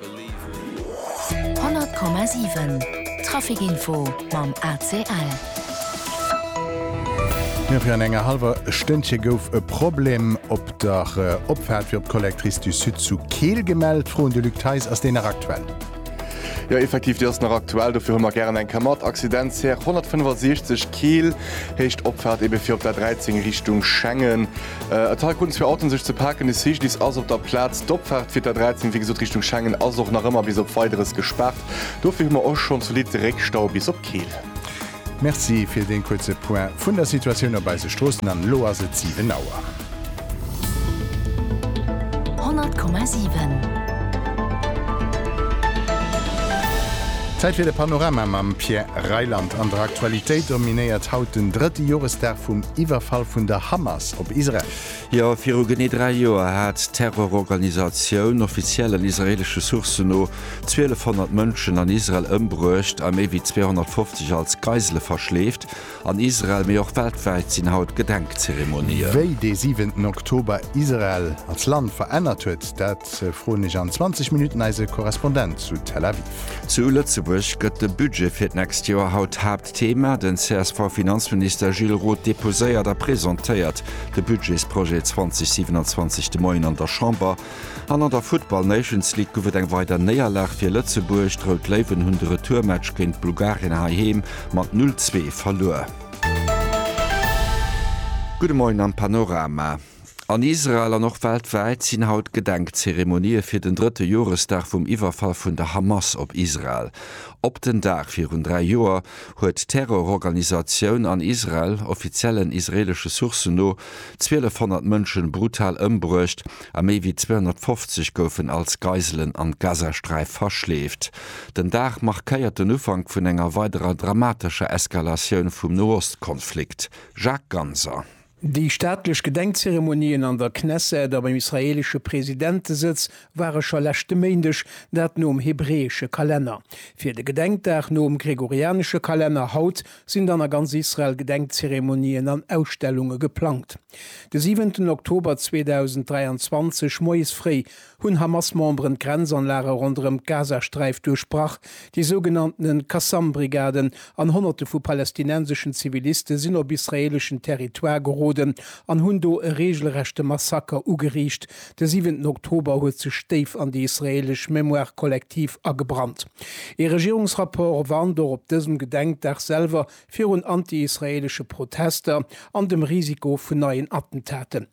100,7 Trafic Info mam ACL. Jo, virun enger hallwer Stënnche gouf e Problem op der Opfaart fir op d'Collectrice du Sud zu Keel gemellt. Froen de Luc Theis, Ass déi nach aktuell? Jo, effektiv, déi ass nach aktuell. Dofir hu mer gären eng Kéier mat. Accidentsär 165 Keel, héicht Opfaart ebe fir op d'A 13 Richtung Schengen. A Teil kruten zwee Autoen sech ze paken. De CGDIS ass op der Plaz. D'Opfaart fir d'A 13, wéi gesot, Richtung Schengen ass och nach ëmmer bis op Weideres gespaart. Dofir hu mer och schonn zolidd Réckstau bis op Keel. Merci fir dee kuerze Point vun der Situatioun op eise Stroossen. An elo ass et 7 Auer. 100,7. Zäit fir de Panorama mam Pierre Reyland. An der Aktualitéit dominéiert haut den drëtte Joresdag vum. Iwwerfall vun der Hamas op Israel. Jo, viru genee dräi Joer hat d'Terrororganisatioun, offiziell an israeelesche Sourcen no, 1200 Mënschen an Israel ëmbruecht a méi wéi 250 als Geisele verschleeft. An Israel, mee och weltwäit, sinn haut Gedenkzeremonien. Wéi dee siwenten Oktober Israel als Land verännert huet, dat froen ech an 20 Minutten eise Korrespondent zu Tel Aviv. Zu Lëtzebuerg gëtt de Budget fir d'nächst Joer haut Haaptthema. Den CSV-Finanzminister Gilles Roth deposéiert a presentéiert de Budgetsprojet 2027 de Moien an der Chamber. An an der Futtball Nations League gouf et eng weider Néierlag fir Lëtzebuerg. D'Rout Léiwen hunn de Retourmatch géint Bulgarien heiheem mat 0, 2 verluer. Gudde Moien am Panorama. An Israel an och weltwäit sinn haut Gedenkzeremonië fir den drëtte Joresdag vum Iwwerfall vun der Hamas op Israel. Op den Dag virun dräi Joer huet d'Terrororganisatioun an Israel, offiziellen israeelesche Sourcen no, 1.200 Mënsche brutal ëmbruecht a méi wéi 250 goufen als Geiselen an d'Gazasträif verschleeft. Den Dag markéiert den Ufank vun enger weiderer dramatescher Eskalatioun vum Nohost-Konflikt. Jacques Ganser. Déi staatlech Gedenkzeremonien an der Knesset a beim israeelesche Presidentesëtz ware scho leschte Méindeg, dat nom hebräesche Kalenner. Fir de Gedenkdag nom gregorianesche Kalenner haut sinn dann a ganz Israel Gedenkzeremonien an Ausstellunge geplangt. De siwenten Oktober 2023 moies fréi hunn Hamas-Memberen d'Grenzanlage ronderëm d'Gazasträif duerchbrach, déi sougenannte Qassam-Brigaden an Honnerte vu palästinenseschen Ziviliste sinn op israeeleschen Territoire geroden an hunn do e reegelrechte Massaker ugeriicht. De siwenten Oktober huet sech déif an déi israeelesch Mémoire collective agebrannt. Ee Regierungsrapport warnt och op dësem Gedenkdag selwer virun anti-israeelesche Protester an dem Risiko vun neien Attentaten.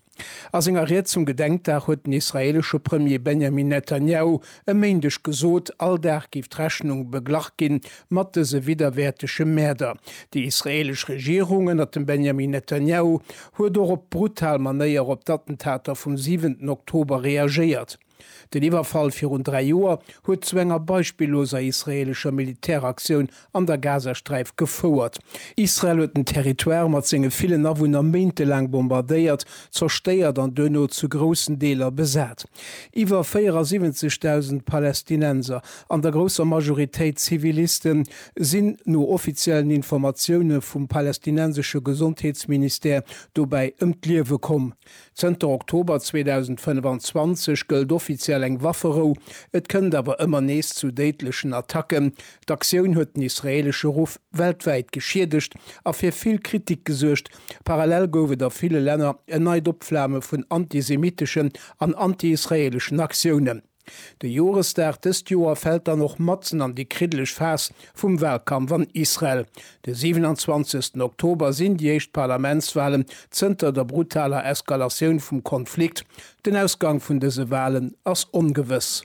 A senger Ried zum Gedenkdag huet den israeelesche Premier Benjamin Netanjahu e Méindeg gesot, all Dag géif d'Rechnung beglach ginn mat dëse widderwäertege Mäerder. Déi israeelesch Regierung ënnert dem Benjamin Netanjahu huet och op brutal Manéier op d'Attentater vum siwenten Oktober reagéiert. Den Iwwerfall virun dräi Joer huet zu enger beispilloser israeelescher Militäraktioun an der Gazasträif gefouert. Israel huet den Territoire mat senge villen Awunner méintelaang bombardéiert, zerstéiert an duerno zu groussen Deeler besat. Iwwer 74.000 Palästinenser, an der grousser Majoritéit Zivilisten, sinn no offiziellen Informatioune vum palästinensesche Gesondheetsministère dobäi ëm d'Liewe komm. Zënter Oktober 2025 gëllt offiziell eng Wafferou, et kënnt awer ëmmer nees zu déidlechen Attacken. D'Aktioun huet den israeelesche Ruff weltwäit geschiedegt a fir vill Kritik gesuergt. Parallel gouf et a ville Länner en neit Opflame vun antisemitteschen an anti-israeeleschen Aktiounen. De Joresdag dëst Joer fält dann och matzen an déi kriddeleg Phas vum Walkampf an Israel. De 27 Oktober sinn déi éischt Parlamentswalen zënter der brutaler Eskalatioun vum Konflikt. Den Ausgang vun dëse Walen ass ongewëss.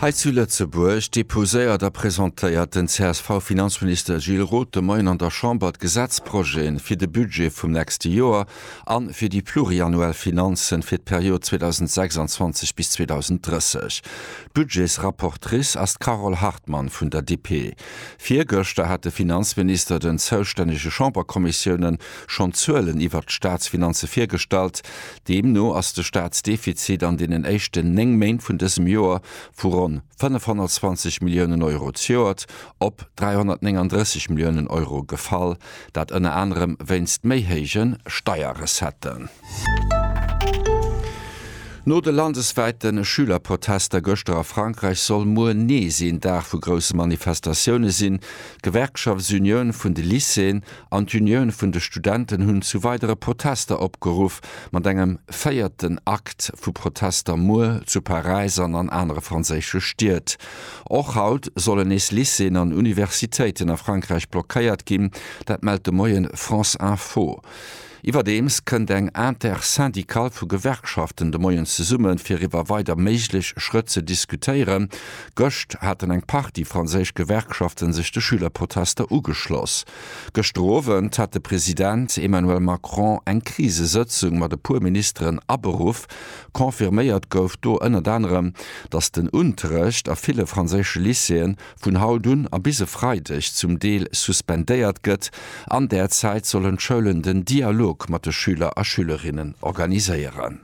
Hei zu Lëtzebuerg deposéiert a presentéiert den CSV-Finanzminister Gilles Roth de Moien an der Chamber d'Gesetzprojeten fir de Budget vum nächste Joer a fir déi pluriannuell Finanzen fir d'Period 2026 bis 2030. D'Budgetsrapportrice ass d'Carole Hartmann vun der DP. Virgëschter hat de Finanzminister den zoustännege Chamberkommissiounen schonn d'Zuelen iwwert d'Staatsfinanze virgestallt. Deemno ass de Staatsdefizit an deenen éischten néng Méint vun dësem Joer vu ronn 520 Milliounen Euro zejoert op 339 Milliounen Euro gefall. Dat ënner anerem wéinst méi héije Steierrecetten. No de landeswäite Schülerprotester gëschter a Frankräich soll muer nees een Dag vu grousse Manifestatioune sinn. D'Gewerkschaftsunioun vun de Lycéeën an d'Unioun vun de Studenten hunn zu weidere Protester opgeruff, mat engem véierten Akt vu Protester muer zu Paräis an an anere franséische Stied. Och haut sollen nees Lycéeën an Universitéiten a Frankräich blockéiert ginn, dat mellt de Moie France Info. Iwwerdeems kënnt eng Intersyndicale vu Gewerkschaften de Moien zesummen, fir iwwer weider méiglech Schrëtt ze diskutéieren. Gëscht haten eng Partie franséisch Gewerkschaften sech de Schülerprotester ugeschloss. Gëschter Owend hat de President Emmanuel Macron eng Krisesëtzung mat e puer Ministeren aberuff, Confirméiert gouf do ënnert anerem, datt den Unterrecht a ville franséische Lycéeën vun haut un a bis e Freideg zum Deel suspendéiert gëtt. An där Zäit sollen d'Schoulen den Dialog mat de Schüler a Schülerinnen organiséieren.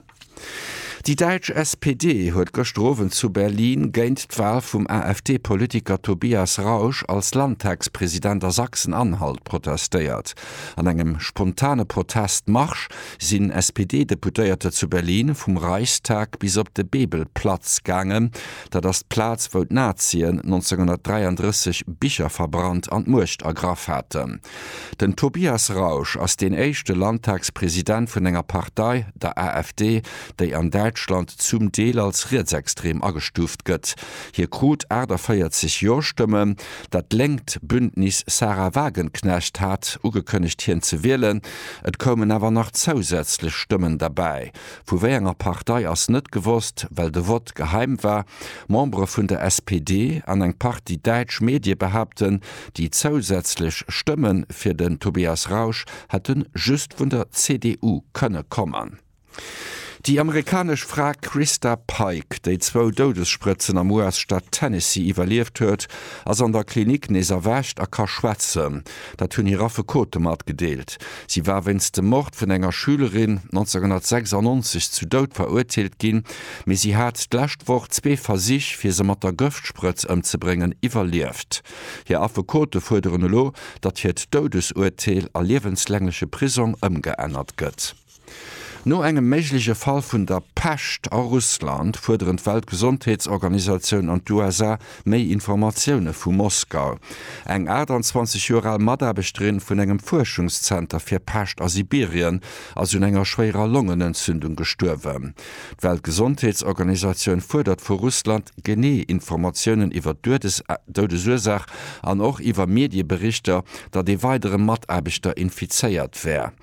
Déi däitsch SPD huet gëschter Owend zu Berlin géint d'Wal vum AfD-Politiker Tobias Rausch als Landtagspresident a Sachsen-Anhalt protestéiert. An engem spontane Protestmarsch sinn SPD-Deputéierter zu Berlin vum Reichstag bis op de Bebelplatz gaangen, dat ass d'Plaz, wou d'Nazien 1933 Bicher verbrannt an d'Muecht ergraff haten. Den Tobias Rausch ass deen éischte Landtagspresident vun enger Partei, der AfD, déi an Däitschland zum Deel als rietsextrem agestuuft gëtt. Hie krut 48 Jo-Stëmmen. Dat lénkt Bündnis Sahra Wagenknecht hat ugekënnegt, hien ze wielen. Et koumen awer nach zousätzlech Stëmmen derbäi. Vu wéi enger Partei ass net gewosst, well de Vott geheim war. Membere vun der SPD an eng Partie däitsch Medie behaapten, déi zousätzlech Stëmme fir den Tobias Rausch hätte just vun der CDU kënne kommen. Déi amerikanesch Fra Christa Pike, déi zwou Doudessprëtzen am US-Staat Tennessee iwwerlieft huet, ass an der Klinik nees erwächt a ka schwätzen. Dat hunn hir Affekote matgedeelt. Si war wéinst dem Mord vun enger Schülerin 1996 zu Doud verurteelt ginn, mee si hat d'lescht Woch zwee Versich, fir se mat der Gëftsprëtz ëmzebréngen, iwwerlieft. Hir Affekote fuerderen elo, datt hiert Doudesurteel a liewenslängleche Prisong ëmgeännert gëtt. No engem méigleche Fall vun der Pescht a Russland fuerderen d'Weltgesondheetsorganisatioun an d'USA méi Informatioune vu Moskau. Eng 28 Joer al Mataarbechterin vun engem Fuerschungszenter fir Pescht a Sibirien ass un enger schwéierer Longenentzündung gestuerwen. D'Weltgesondheetsorganisatioun fuerdert vu Russland genee Informatiounen iwwer d'Doudesursaach an och iwwer Medieberichter, datt ee weidere Mataarbechter infizéiert wär.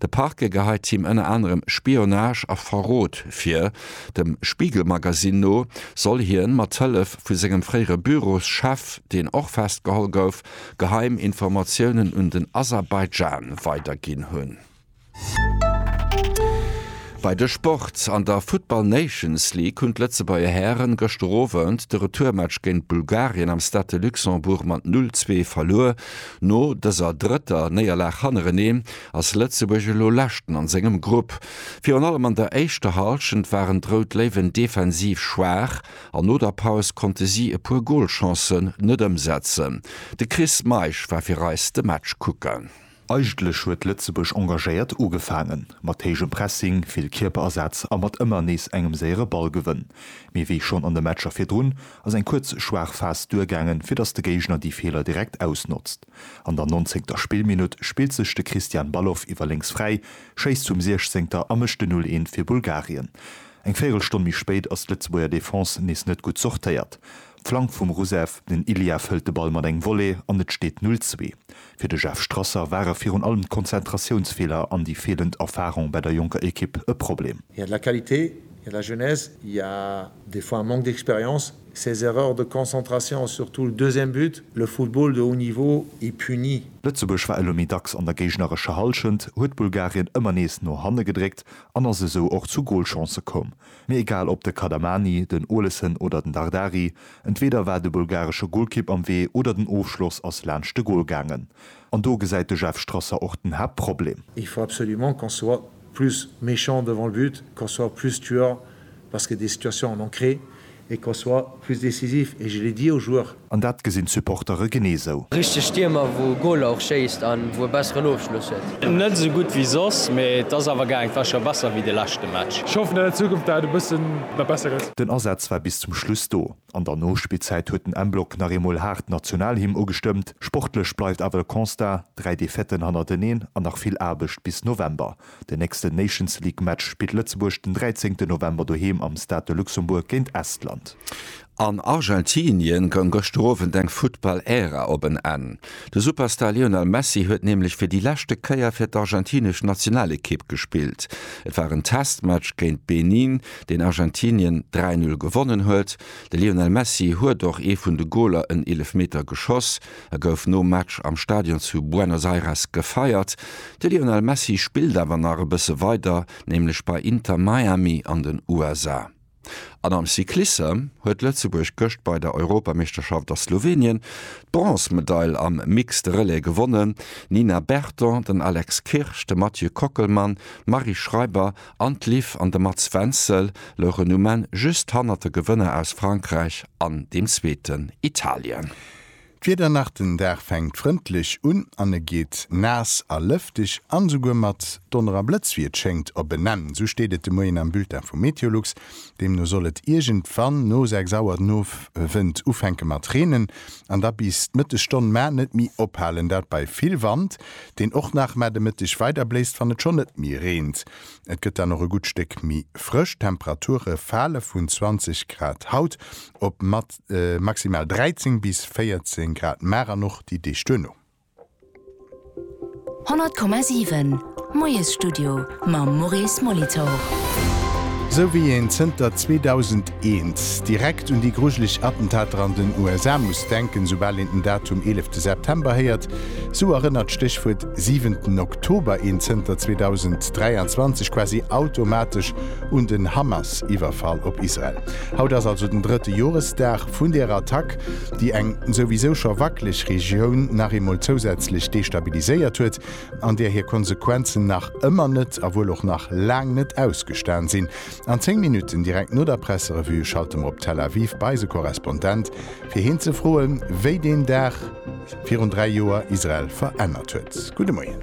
De Parquet geheit him ënner anerem Spionage a Verrot vir. Dem Spiegel-Magazine no soll hien mat Hëllef vu sengem fréiere Büroschef, deen och festgeholl gouf, geheim Informatiounen un den Aserbaidschan weiderginn hunn. Bei de Sport, An der Futtball Nations League hunn d'Lëtzebuerger Hären gëschter Owend de Retourmatch géint Bulgarien am Stade de Luxembourg mat 0, 2 verluer. No dëser drëtter Néierlag hannerenee ass Lëtzebuerg elo Leschten an sengem Grupp. Virun allem an der éischter Hallschent waren d'Rout Léiwen defensiv schwaach an no der Paus konnte si e puer Golchancen net ëmsetzen. De Chris Meisch war fir eis de Match kucken. Eigentlech huet Lëtzebuerg engagéiert ugefaangen, mat héijem Pressing, vill Kierperasaz a mat ëmmer nees engem séiere Ballgewënn. Mee wéi schonn an de Matcher virdrun ass eng kuerz schwaach Phas duergaangen, fir datt de Géigner déi Feeler direkt ausnotzt. An der nonzéngter Spillminutt spillt sech de Christian Balogh iwwer lénks fräi, schéisst vum Siechzéngter a mécht den 'Null een' fir Bulgarien. Eng Véierelstonn méi spéit ass d'Lëtzebuerger Defense nees net gutt sortéiert. Flank vum Rusev, den Iliev hëlt de Ball mat engem Volley an et steet 'Null zwee'. Fir de Jeff Strasser ware virun allem d'Konzentratiounsfeeler an déi feelend Erfarung bei der jonker Ekipp e Problem. Il y a de la qualité, il y a de la jeunesse, il y a. Des fois un manque d'expérience, ces erreurs de concentration, surtout le deuxième but, le football de haut niveau est puni. Lëtzebuerg war elo méi dacks an der géignerescher Hallschent, huet Bulgarien ëmmer nees no hanne gedréckt an ass esou och zu Golchancë komm. Mee egal op de Kadamani, den Olesen oder den Dardari, entweeder war de bulgaresche Golkipp am Wee oder den Ofschloss ass laanscht de Gol gaangen. An do gesäit de Jeff Strasser och den Haaptproblem. Il faut absolument qu'on soit plus méchant devant le but, qu'on soit plus tueur parce que des situations en ont créé et qu'on soit plus décisif et je l'ai dit aux joueurs. An dat gesinn d'Supportere genee sou. Richteg Stiermer wou Goaler och schéisst an wou e besseren Ofschluss huet. Net esou gutt wéi soss, mee et ass awer gaang. Et war scho besser wéi de leschte Match. Ech hoffen an der Zukunft dat et e bëssen nach besser gëtt. Den Asaz war bis zum Schluss do. An der Nospillzäit huet den M-Block nach eemol haart d'Nationalhymn ugestëmmt. Sportlech bleift awer de Constat, dräi Defaiten hannerteneen an nach vill Aarbecht bis November. Den nächsten Nations League Match spillt Lëtzebuerg den 13 November doheem am Stade de Luxembourg géint Estland. An Argentinien goung gëschter Owend eng Futtball-Ära op en Enn. De Superstar Lionel Messi huet nämlech fir déi leschte Kéier fir d'argentinesch Nationalekipp gespillt. Et war en Testmatch géint Benin. deen Argentinien 3, 0 gewonnen huet. De Lionel Messi huet och ee vun de Goler en Eelefmeter geschoss. E gouf nom Match am Stadion zu Buenos Aires gefeiert. De Lionel Messi spillt awer nach e bësse weider, nämlech bei Inter Miami an den USA. An am Cyclissem huet Lëtzebuerg gëscht bei der Europameeschterschaft a Slowenien d'Bronzmedail am Mixed Relais gewonnen. D'Nina Berton, den Alex Kirsch, de Mathieu Kockelmann, d'Marie Schreiber An d'Liv an de Mats Wenzel louchen um Enn just hannert de Gewënner aus Frankräich an dem zweeten Italien. D'Wieder nach Den Dag fänkt frëndlech un an e geet naass a lëfteg an esouguer mat Donner a Blëtz wéi et schéngt op en Enn. Esou steet et de Moien am Bulletin vu Meteolux. Deemno soll et iergendwann no 6 Auer den Owend ufänke mat reenen an da bis d'Mëttesstonn, mä net méi ophalen. Dat bei vill Wand. deen och nach mar de Mëtteg weider bléist, wann et schonn net méi reent. Et gëtt dann och e gutt Stéck méi frësch, d'Temperature fale vun 20 Grad haut op maximal 13 bis 14 Grad mar an och déi Deeg duerno. 100,7 Moiesstudio mam Maurice Molitor. Esou wéi een zënter 2011 Eens. Direkt un déi grujeleg Attentater an den USA muss denken, soubal een den Datum eelefte September héiert. Sou erënnert d'Stéchwuert siwenten Oktober een zënter 2023 quasi automatesch un den Hamas-Iwwerfall op Israel. Haut ass also den drëtte Joresdag vun där Attack, déi eng souwisou scho wackeleg Regioun nach eemol zousätzlech destabiliséiert huet, an där hir Konsequenzen nach ëmmer net a wuel och nach laang net ausgestan sinn. An 10 Minutten, direkt no der Presserevue, schalte mer op Tel Aviv bei eise Korrespondent, fir hien ze froen, wéi deen Dag virun dräi Joer Israel verännert huet. Gudde Moien.